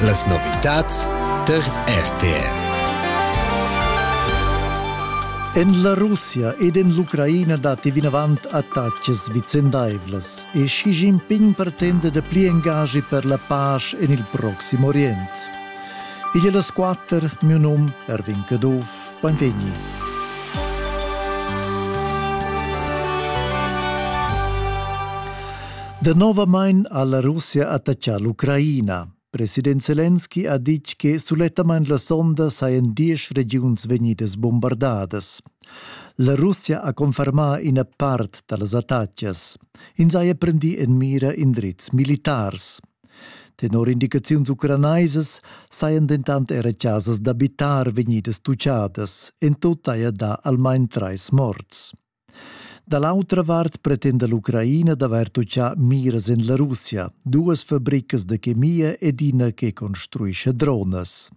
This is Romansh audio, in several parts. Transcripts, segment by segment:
Las novitads tar RTV. En la Russia ed en l'Ucraina datti vinavant attacas vicendaivlas e Xi Jinping pretenda da pli engagi per la pace en il Proxim Orient. Igl è las quatter, mio num Erwin Caduff. Beinvegni! Danovamain ha la Russia attaccà l'Ucraina. President Zelensky ha ditg che sulettamain la sonda sajan diesch regiuns vegnidas bombardadas. La Russia ha confermà ina part da las attacas. Ins haja prendì en mira indrizs militars. Tenor indicaziuns ucranaisas sajan dentant era chasas d'abitar vegnidas tuchadas, en tut haja dà almain trais morts. Da l'autra vart pretenda l'Ucraina d'avair tuchà miras en la Russia, duas fabricas da chemia ed ina che construisce dronas.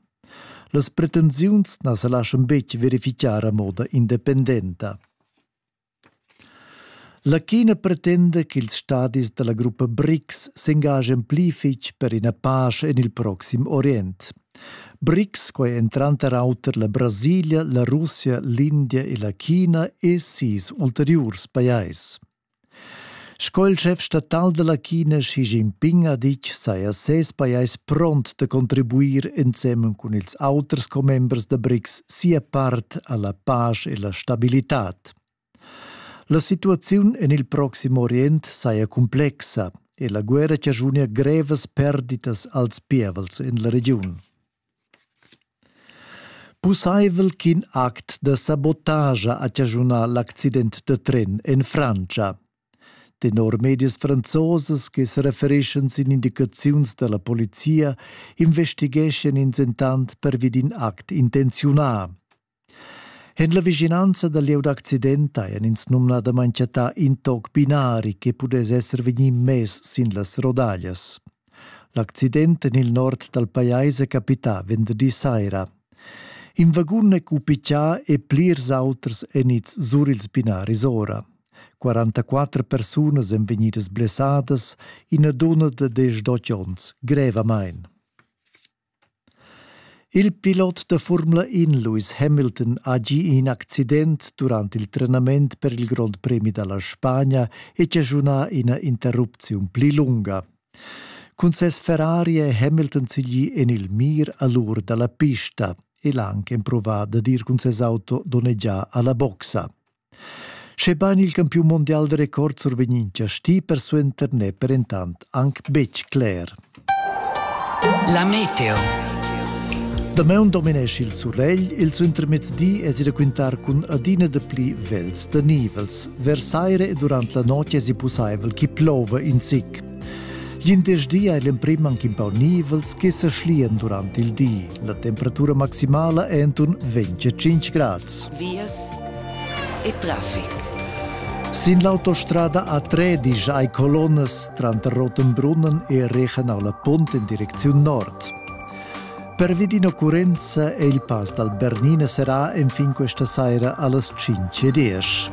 Las pretensiuns na sa laschan betg verifichar a moda independenta. Latina pretenda ch'ils stadis dalla gruppa BRICS s'engagen pli fetg per ina pasch en il proxim orient. BRICS, quei ein tranter auter la Brasilia, la Russia, l'India e la China e sis ulteriurs pajais. Sco il chef statal della China Xi Jinping ha ditg, saja ses pajais pront da contribuir ensemen cun ils auters commembers da BRICS sia part alla pace e la stabilitad. La situaziun en il Proximo Orient saja complexa e la guerra chaschunia grevas perditas als pievels en la regiun. Pussaivel ch'in act da sabotascha ha chaschunà l'accident da tren en Frantscha. Tenor medias franzosas che serefereschan sin indicaziuns da la polizia investigeschan ins entant pervi d'in act intenziunà. En la vischinanza dal lieu d'accident hajan ins numnadamain chattà in toc binari che pudess esser vegnì mess sin las rodaglias. L'accident en il nord dal pajais è capità venderdi saira. In vagun è cupichà e plirs auters èn ids sur ils binaris ora. 44 persunas èn vegnidas blessadas, ina dunna da 18 onns grevamain. Il pilot da Formula In Lewis Hamilton ha gì in accident durant il trenament per il Grond Premi da la Spagna e chaschunà ina interrupziun pli lunga. Cun ses Ferrari è Hamilton siglì en il mir a l'ur da la pista e l'ha anche emprovà dad ir cun ses auto donnegià a la boxa. Schebain il campiun mundial da record survegnin chastì persuenter n'è per entant anc betg cler. La meteo. Damaun dominesci il suregl, il suintermezdi es i raquintar cun adina da pli vels da nivels. Versaire e durant la notg es i pussaivel chi plouva in sic. Glindesdi ei l'emprim anc in pau nivels che sa schlian durant il di. La temperatura maximala è enturn 25 grads. Vias e traffic. Sin l'autostrada A3 disch ai colonnas tranter Rotenbrunnen e Rechen alla Punt in direcziun nord. Pervi d'in'occurrenza è il pass dal Bernina serrà enfin questa saira allas 5.10.